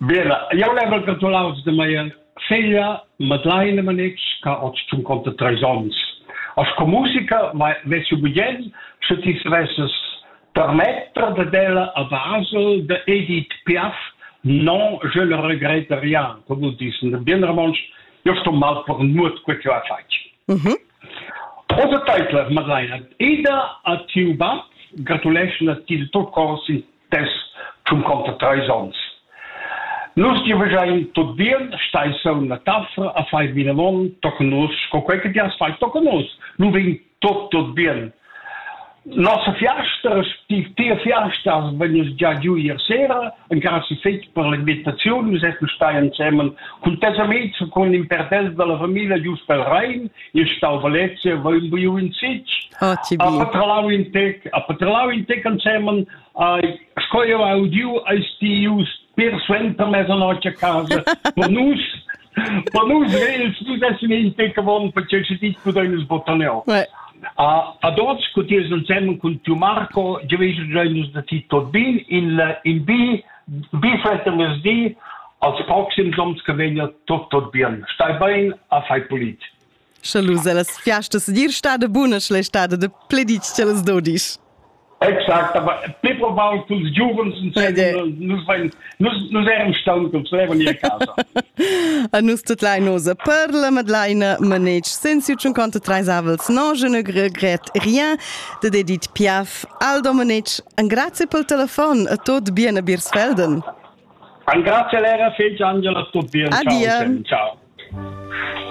Bene, jau l'hai gratulau da mia figlia Madeleine Manitsch ch'ha oz tschunconta treis onns. Sco musica vess jeu bugen, sche ti savesses permetter dad ella a Basel de Edith Piaf Non, je ne regrette rien, come vous dites in bien romontsch, io sto mal per nuot quel che ha fatg. Mm -hmm. Osa teitler, Madeleine, ida a tiu bab, gratuleschna ti de tot cors in dess tschun conter treis onns. Nus giuvegiain tut bien, stai sun la taffa a fai vinavon tochen nus, sco quei che ti has fai tochen nus. Lu vegn tot tot bien. Nossa fiasta, tia fiasta vegn già giu ier sera, en casa fetg per l'imitaziun, nus esser stai ensemen cun tes amics, con in perdel dalla familia giust pel Rhein, io stau Valencia, va in buiu in Sitg, ah, a patralau in tec, a patralau in tec ansemen, sco io ha udiu ai stius per suenter mezzanotte a casa, per nus, per nus vels nu dessen in tec avon perché se dit pudein sbotaneo. Ouais. A, a tots, cu ties ansemen cun tiu Marco, giaveish giai nus da ti tot bin, il, in bi, Be suenter mezdi als proxims onns che veglia tut tot bien. Stai bein a fai pulit. Sche lu las fiastas dir stada bunas la stada de pleditg cellas dodisch. Exakt, aber pli probabel culs giuvens nus vein nus nus eran staun culs levon ir casa. A nus tut lai nosa per la madlaina manetsch sensiu tschun conta treis avels non je ne gret rien de dedit piaf al Domenic, an grazie pel telefon a tot bien a Birsfelden. An grazie lera fece Angela, tot bien. Adia. Ciao. ciao.